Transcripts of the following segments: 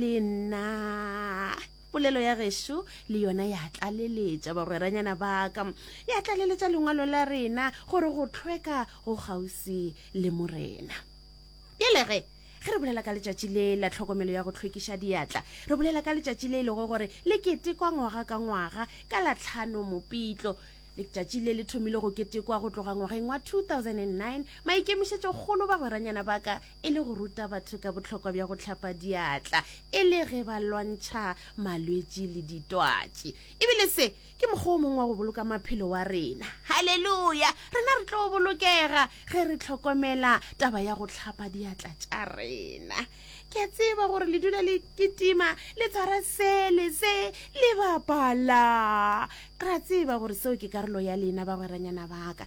le nna polelo ya gešo le yona ya tlaleletša bagweranyana baka ya tlaleletša lengwalo la rena gore go tlhweka go kgauswi le morena pele ge ge re bolela ka letšatši le la tlhokomelo ya go tlhwekiša diatla re bolela ka letšatši le e lego gore le ketekwa ngwaga ka ngwaga ka latlhano mopitlo letšatši le le thomile go ketekwa go tloga ngwageng wa 2009 maikemišetšokgolo bagweranyana ba ka e le go ruta batho ka bohlokwa bja go hlapa diatla e le ge ba lwantšha malwetši le ditwatši ebile se ke mokgwa o mongwe wa go boloka maphelo wa rena halleluya rena re tlo bolokega ge re tlhokomela taba ya go hlapa diatla tša rena ke a tseba gore le dula le kitima le tshwara sele se le bapala ra tseba gore seo ke karolo ya lena bagweranyana baka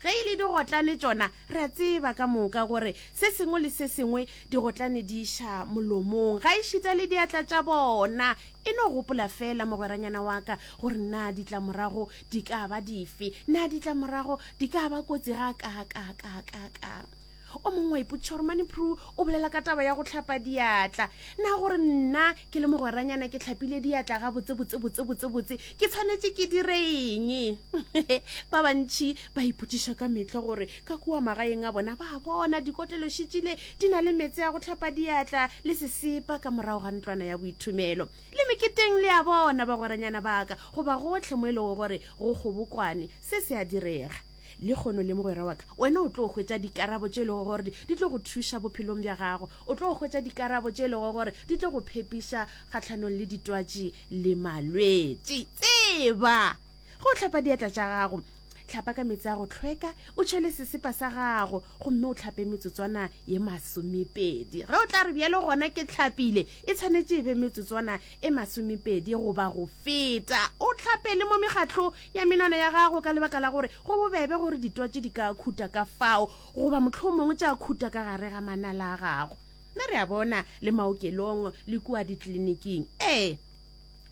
Ge e le digotlane tšona, re a tseba ka moka gore se sengwe le se sengwe digotlane di iša molomong, gaešita le diatla tša bona. E no gopola feela, mogweranyana wa ka, gore na ditlamorago di ka ba dife, na ditlamorago di ka ba kotsi gakaakaakaa. o mongwe wa ipotsiša gore mane pru o bolela ka taba ya go tlhapa diatla na gore nna ke le mogweranyana ke tlhapile diatla ga botsebotsebotsebotsebotse ke tshwanetse ke dire eng ba bantšhi ba ipotsiša ka metlha gore ka kua magaeng a bona ba bona dikotlelošitšile di na le metse ya go tlhapa diatla le sesepa ka morago ga ntlwana ya boithomelo le meketeng le ya bona bagweranyana baka goba gotlhe mo e lego gore go kgobokwane se se a direga Le kgono le mogwera wa ka, wena o tlo hwetša dikarabo tše e lego gore di, di tlo go thuša bophelong bja gago. O tlo hwetša dikarabo tše e lego gore di tlo go phepiša kgahlanong le ditwatši le malwetši. Tseba! Ge o hlapa diatla tša gago, hlapa ka meetse a go tlhweka, o tšhele sesepa sa gago, gomme o hlape metsotswana ye masomepedi. Ge o tla re, Bjale gona ke hlapile, e tshwanetše e be metsotswana e masomepedi goba go feta. O hlape le mo mekgatlo ya menwana ya gago ka lebaka la gore go bobebe gore ditwatši di ka khuta ka fao goba mohlomongwe tša khuta ka gare ga manala a gago. Na re a bona le maokelong le kua ditliliniking? Ee.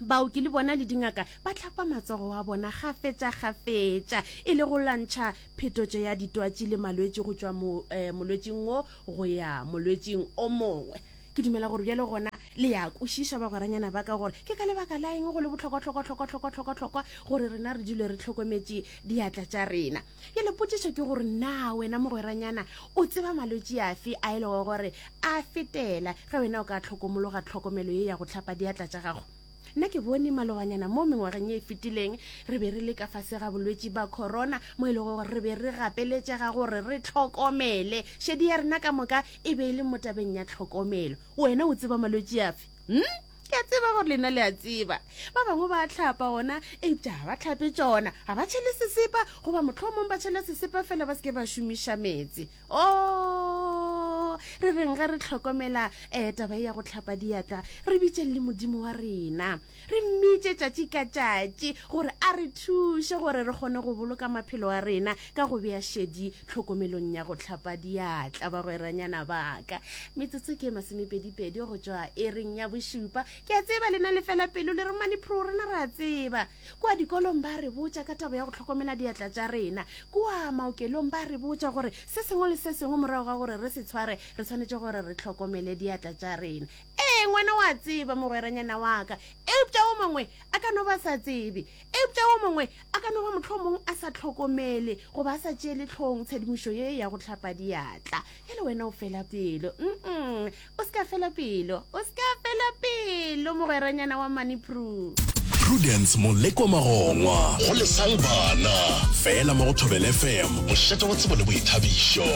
Baoki le bona le dingaka ba hlapa matsogo a bona kgafetšakgafetša e le go lwantšha phetotšo ya ditwatši le malwetši go tšwa molwetšing wo go ya molwetšing o mongwe. Ke dumela gore bjale gona le ya kwešiša bagweranyana ba ka gore ke ka lebaka la eng go le bohlokwa-hlokwa-hlokwa-hlokwa-hlokwa-hlokwa gore rena re dule re hlokometše diatla tša rena. Bjale potšišo ke gore na wena mogweranyana o tseba malwetši afe a e lego gore a fetela ge wena o ka hlokomologa tlhokomelo ye ya go hlapa diatla tša gago? Nna ke bone maloganyana mo mengwageng ye e fetileng re be re le ka fase ga bolwetši ba corona mo e lego gore re be re gapeletšega gore re tlhokomele šedi ya rena ka moka e be e le mo tabeng ya tlhokomelo. Wena o tseba malwetši afe? Hm? Ke a tseba gore lena le a tseba. Ba bangwe ba a tlhapa gona, eupša ga ba tlhape tšona, ga ba tšhele sesepa, goba mohlomong ba tšhela sesepa fela ba se ke ba šomiša meetse. o oh, re reng ge re tlhokomela um taba e ya go tlhapa diatla re bitseng le modimo wa rena re mmitse tšatši ka tšatši gore a re thuše gore re kgone go boloka maphelo a rena ka go bea šedi tlhokomelong ya go tlhapa diatla bagweranyana baka metsotso ke masomepedipedi go tšwa e reng ya bošupa ke a tseba lena le fela pelo le re manepro rena re a tseba Kua dikolong ba re botša ka taba ya go hlokomela diatla tša rena. Kua maokelong ba re botša gore se sengwe le se sengwe morago ga gore re se tshware re swanetše gore re hlokomele diatla tša rena. Ee, ngwana o a tseba, mogweranyana wa ka, eupša o mongwe a ka no ba sa tsebe. Eupša o mongwe a ka no ba mohlomong a sa hlokomele goba a sa tšeele hlogong tshedimošo ye ya go hlapa diatla. Bjale wena o fela pelo. Um-um. o se ka fela pelo o se ka fela pelo mogweranyana wa money proof prudence moleko magongwa go lesang bana fela mo go thobel fm mošate wa tsebo le boithabišo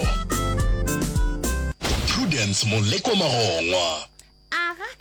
prudence moleko magongwa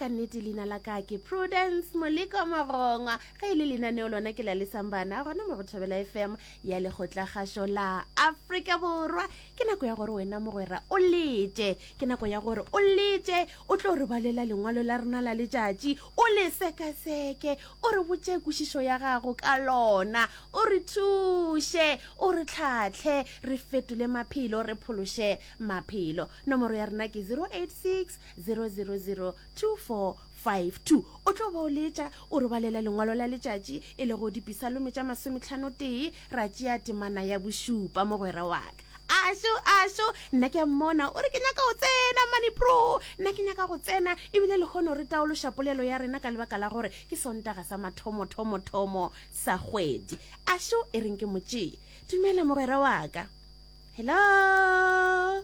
ka nnete leina la ka ke prudence moleko mogongwa ge e le lenaneo lona ke la lesang bana gona mo go thobela fm ya lekgotlakgašo la afrika borwa ke nako ya gore wena mogwera o lete ke nako ya gore o lete o tlo re balela lengwalo la rena la letšatši o le sekaseke o re botše kwešišo ya gago ka lona o re thuše o re tlhatlhe re fetole maphelo re phološe maphelo nomoro ya rena ke 086 000 24 5, 2 o tlo ba o letša, o robalela lengwalo la letšatši, e lego dipisalome tša masometlhanotee, ra tšea temana ya bošupa, mogwera wa ka. Ašo, ašo, nna ke a mmona, o re, Ke nyaka go tsena, mane pro, nna ke nyaka go tsena. E bile lehono re taološa polelo ya rena ka lebaka la gore ke Sontaga sa mathomothomo-thomo sa kgwedi. Ašo, e reng ke mo tšee? Dumela, mogwera wa ka. Hello?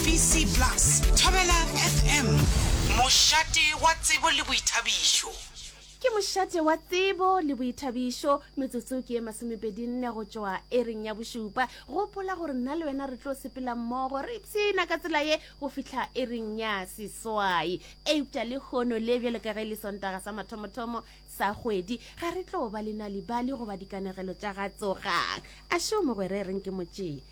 BC Plus, Thobela FM. Mošate wa tsebo le boithabišo. Ke mošate wa tsebo le boithabišo metsotso ke ye masomepedinne go tšwa ereng ya bošupa gopola gore nna le wena re tlo sepela mmogo re ipshina ka tsela ye go fitlha ereng ya seswai eupša le kgono le bjalo ka ge le sontaga sa mathomothomo sa kgwedi ga re tlo ba le nalibali goba dikanegelo tša ga tsogang a šo mogwere reng ke motšee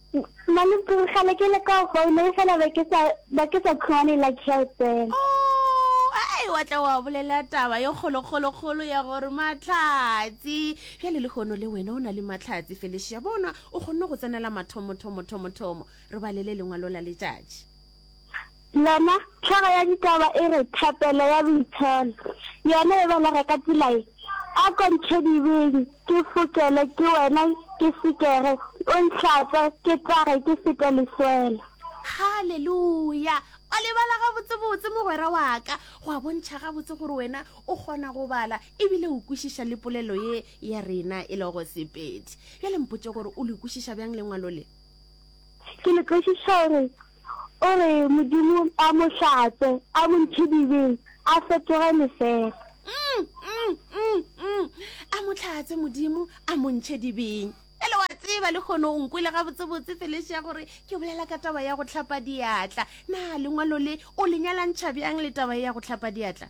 Mane kgale ke le ka founa e fela ba ke sa ba ke sa khone la chelten. Oh, ai wa tla wa bolela taba yo kholo kholo kholo ya gore matlhatsi. Bja le le hono le wena o na le matlhatsi Felicia bona o khonne go tsenela mathomo thomo thomo thomo re balele lengwa lola letšatši. Lona, hlogo ya ditaba e re, Thapelo ya Boitsholo, yona e belega ka tsela ye, Ako ntšhedibeng, ke fokele, ke wena, ke sekege, o nhlatswe, ke tsage, ke fete leswele. Haleluya! O lebala gabotsebotse, mogwera wa ka. Go a bontšha gabotse gore wena o kgona go bala e bile o kwešiša le polelo ye ya rena e lego Sepedi. Bjale mpotše gore o le kwešiša bjang Lengwalo le. Ke le kwešiša gore o re Modimo a mo hlatswe, a mo ntshe dibeng, a fetoge lefela. A mo hlatswe Modimo, a mo ntšhe dibeng. Bjale wa tseba le kgono o nkwele gabotsebotse Felicia gore ke bolela ka taba ya go hlapa diatla. Na lengwalo le o le nyalantšha bjang le taba e ya go hlapa diatla?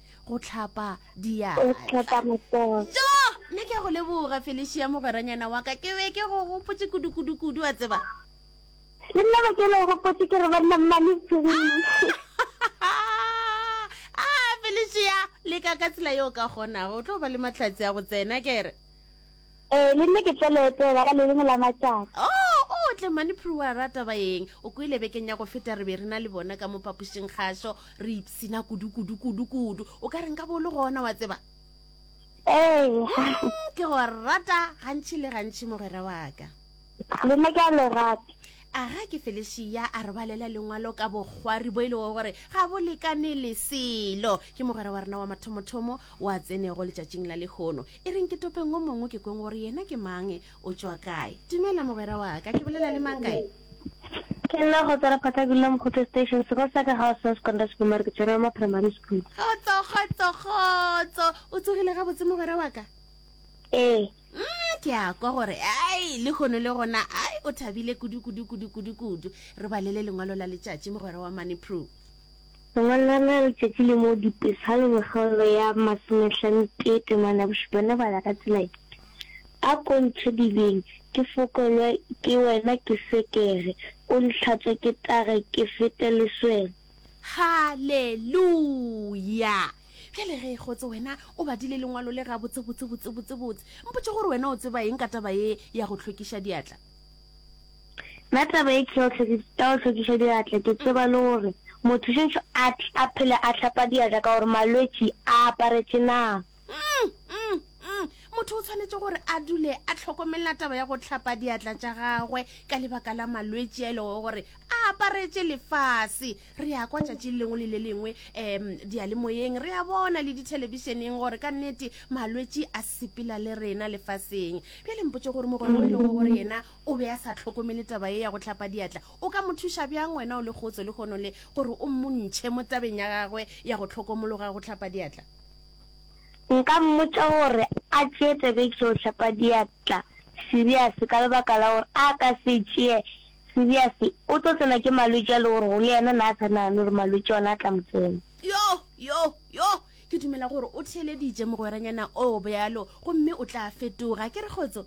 go tlhapa diatlaa jo mme ke a go leboga felicia mogweranyana wa ka ke be ke go gopotse kudu-kudu-kudu a tseba le nna ba ke le gopotse ke re banna mmane a felicia le ka ka tsela yo ka kgonago o tlo ba le matlhatsi a go tsena kere Ee, le nne ke tlo le etela ka le lengwe la matšatši. Oo, o tle mane Prue a rata ba eng. O kwele bekeng ya go feta re be re na le bona ka mo phapošing kgašo re ipshina kudu, kudu, kudu, kudu. O ka re nka bo o le gona, wa tseba. Ee. Ke go rata gantši le gantši mogwera wa ka. Lena ke a le rata. Aga ke Felicia a robalela lengwalo ka bokgwari bo e lego gore ga bo lekane le selo. Ke mogwera wa rena wa mathomothomo o a tsenego letšatšing la lehono. E reng ke topeng o mongwe ke kweng gore yena ke mang, o tšwa kae. Dumela mogwera wa ka, ke bolela le mang kae? Ke nna Kgotsana Phathakula Mokgotho Station, sekolo sa ka ga o sa secondary school mare ke tswere wa ma primary school. Kgotso, kgotso, kgotso. O tsogile gabotse mogwera wa ka? Ee. Nna ke a kwa gore ai lehono le gona ai o thabile kudu kudu kudu kudu kudu. Re balele lengwalo la letšatši mogwera wa mane Prue. Lengwalo la rena la letšatši le mo Dipesaleng kgaolo ya masomehlanothee temana ya bošupa ne bala ka tsela ye, A ko ntšhedibeng ke fokelwe ke wena ke sekere, o ntlhatswe ke tare ke fete leswele. Haleluya! Bjale ge e kgotse wena o badile lengwalo le gabotsebotsebotsebotsebotse, mpotše gore wena o tseba eng ka taba ye ya go hlwekiša diatla? Nna taba ye ke ya go hlwekiša diatla ke tseba le gore motho šetše a phele a hlapa diatla ka gore malwetši a aparetše na. mm, mm, mm. motho o tshwanetse gore a dule a tlhokomelela taba ya go tlhapa diatla tša gagwe ka lebaka la malwetši a e lego gore a aparetse lefase re ya kwa tšatši lengwe le le lengwe um dialemoyeng re ya bona le dithelebišeneng gore ka nnete malwetši a sepela le rena lefaseng bjale mpotse gore mogolo e lego gore yena o be a sa tlhokomele taba ye ya go tlhapa diatla o ka mo thuša bjang wena o le kgotso le kgono le gore o montšhe mo tabeng ya gagwe ya go tlhokomologa go tlhapa diatla Nka mmotša gore a tšee tsebegišo go hlapa diatla serious ka lebaka la gore a ka se e tšee serious o tlo tsena ke malwetši a le gore go le yena na a sa nagane gore malwetši ona a tla mo tsena. Yo! Yo! Yo! Ke dumela gore o theeleditše mogweranyana oo bjalo gomme o tla fetoga. Ke re, Kgotso?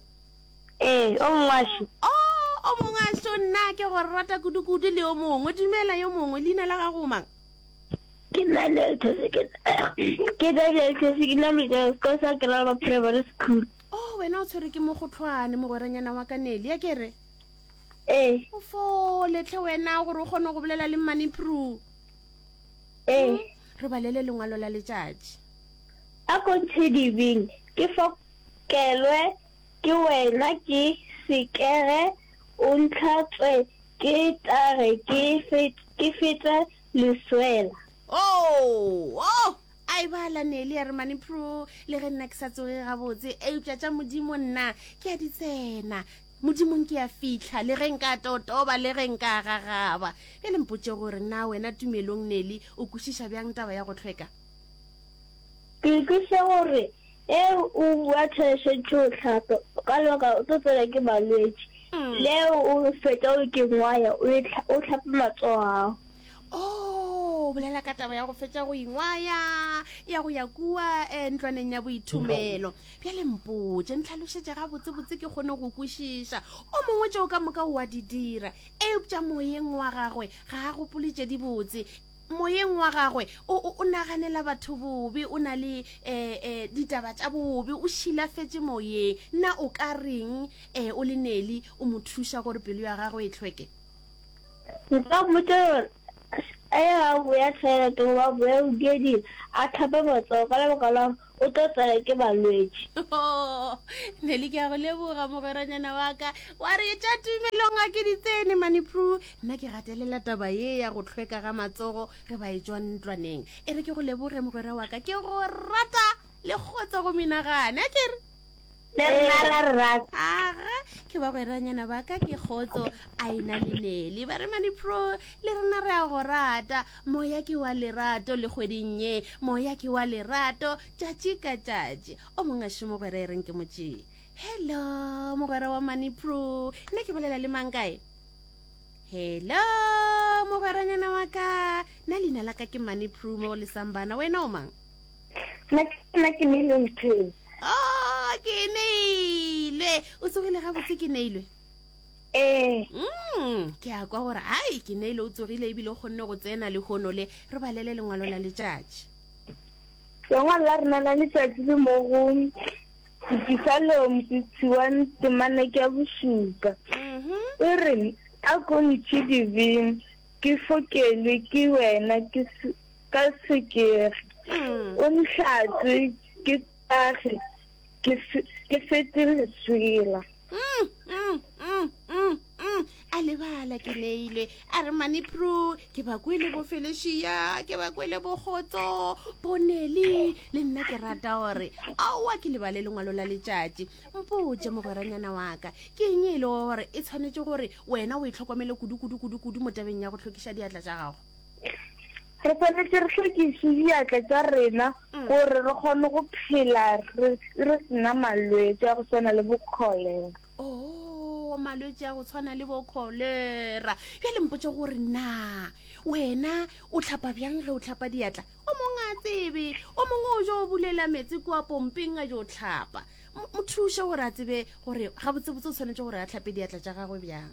Ee, o mongwaxo. Oo, o mongwaxo, nna ke go rata kudukudu le yo mongwe. Dumela, yo mongwe. Leina la gago o mang? Ke na le ke na le economics ko sa Keraba Primary School. Oh, wena o tshwere ke mo go tlhwane mogweranyana wa ka neli ya kere. Eh. O fo letle wena gore o kgone go bolela le money pro. Eh. Hmm? Re balele lengwalo la letšatši. A continue ke fo kelwe Ke wena ke sekege o ntlhatswe ke tlage ke ke fete leswela. Oh! Oh! A e ba la Nelly a re mane phro le ge nna ke sa tsoge gabotse eupša tša Modimo nna ke a di tsena. Modimong ke a fihla le ge nka totoba le ge nka gagaba. Bjale mpotše gore na wena Tumelong Nelly o kwešiša bjang taba ya go hlweka? Ke kwešiša gore Ge o bua therešo tšo o hlapa, o ka lebaka o tlo tsena ke malwetši. Le ge o fetša o ke ngwaya, o e tlha, o hlape matsogo a gago. Oh, o bolela ka taba ya go fetša go ingwaya, ya go ya kua eh, ntlwaneng ya boithomelo. Bjale mpotše, ntlhalošetše gabotsebotse ke kgone go kwešiša. O mongwe tšeo ka moka o a di dira, eupša moyeng wa gagwe ga a gopole tše dibotse. moyeng wa gagwe o, o, o naganela batho bobe o na le eh, eh, ditaba tša bobe o šilafetše moyeng na o ka reng eh, o le neli o mo thuša gore pelo ya gagwe e hlweke nka mmotsa gore a ye a boya toilet goba a boya bogeding a tlhape matsogo ka lebaka la o tlo tsaya ke balwetši oh, neli ke ya go leboga mogweranyana wa ka wa re tša tumelong ga ke ditsene mane pru nna ke gatelela taba ye ya go tlhweka ga matsogo re ba e tswa ntlwaneng e re ke go leboge mogwera wa ka ke go rata le kgotsa go menagane a kere Le rena ra re rata. Aga, ke bagweranyana ba ka ke Kgotso, Aina le Nelly. Baremane Pro, le rena re a go rata. Moya ke wa lerato le kgweding ye. Moya ke wa lerato tšatši ka tšatši. O mong a še mogwera e reng ke mo tšee. Hello, mogwera wa Mani Pro. Nna ke bolela le mang kae? Hello, mogweranyana wa ka. Nna leina la ka ke Mani Pro mo go lesang bana. Wena o mang? nna ke nna ke neilwe nteng o oh, ke neilwe o tsogile ga botse ke neilwe ee mm, ke a kwa gore ai ke neilwe o tsogile ebile o kgonne go tsena le gono le re balele lengwalo la letšatši lengwalo la rena la letšatši le mo go disalom setsiwang temana ke ya bosupa mm-hmm. e re a ko ntšhidibeng ke fokelwe ke wena ke ka sekegi o ntlhatse ke tagi ke fe- ke fete leswela Mm, mm, mm, mm, mm. a lebala ke neilwe a re mane pru ke ba kwele bo felešia ke ba kwele bokgotso bonele le nna ke rata gore aowa ke lebale lengwalo la letšatši mpotse mogweranyana waka ke eng e le gore e tshwanetse gore wena o e tlhokomele kudu-kudu-kudu-kudu mo tabeng ya go tlhokiša diatla tša gago re tshwanetse re hlwekiše diatla tša rena mm. gore re kgone go phela re sena malwetse a go tshwana le bokholera oh, malwetse a go tshwana le bokholera bja lempotse gore na wena o tlhapa bjang ge o tlhapa diatla o mongwe a tsebe o mongwe o jo o bulela metsi kua pompeng a jo tlhapa mo thuše gore a tsebe gore gabotsebotse o tshwanetse gore a tlhape diatla tša gagwe bjang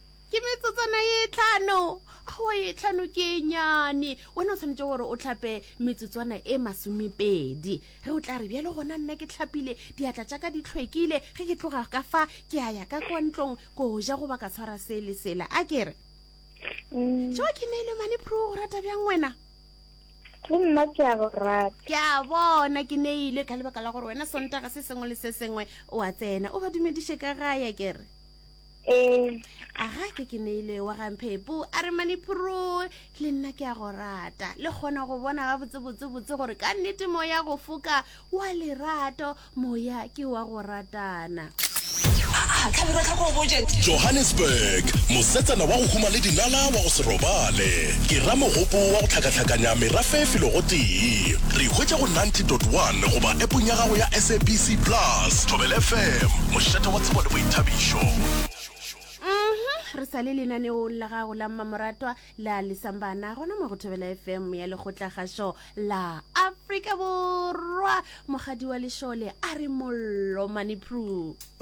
Ke metsotsana ye tlhano. Aowa, ye tlhano ke e nyane. Wena o tshwanetse gore o tlhape metsotswana e masomepedi. Ge o tla re, Bjalo gona nna ke tlhapile, diatla tša ka di hlwekile, ge ke tloga ka fa, ke a ya ka kwa ntlong ko ja goba ka tshwara se le sela. A ke re? Mm. Tšoa ke neile mane phru go rata bjang wena? le nna ke a go rata ke a bona ke neile ka lebaka la gore wena sontaga se sengwe le se sengwe o a tsena o ba dumediše ka gaya kere ee aga ke ke neile wa gamphepo a re maniphoroe le nna ke a go rata le kgona go bona ga botsebotsebotse gore ka nnete moya go foka wa lerato moya ke wa go ratana johannesburg mosetsana wa go huma le dinala wa go se robale ke ramogopo wa go tlhakatlhakanya merafe filogo tee re hwetša go 90.1 goba epong ya gago ya sabc plus tobel fm mošate wa tsebo boithabišo mhm re sa le lenaneong la gago la mmamoratwa la lesambana gona mo go thobela fm ya lekgotlagašo la afrika borwa mogadi wa lešole a re mollo manepru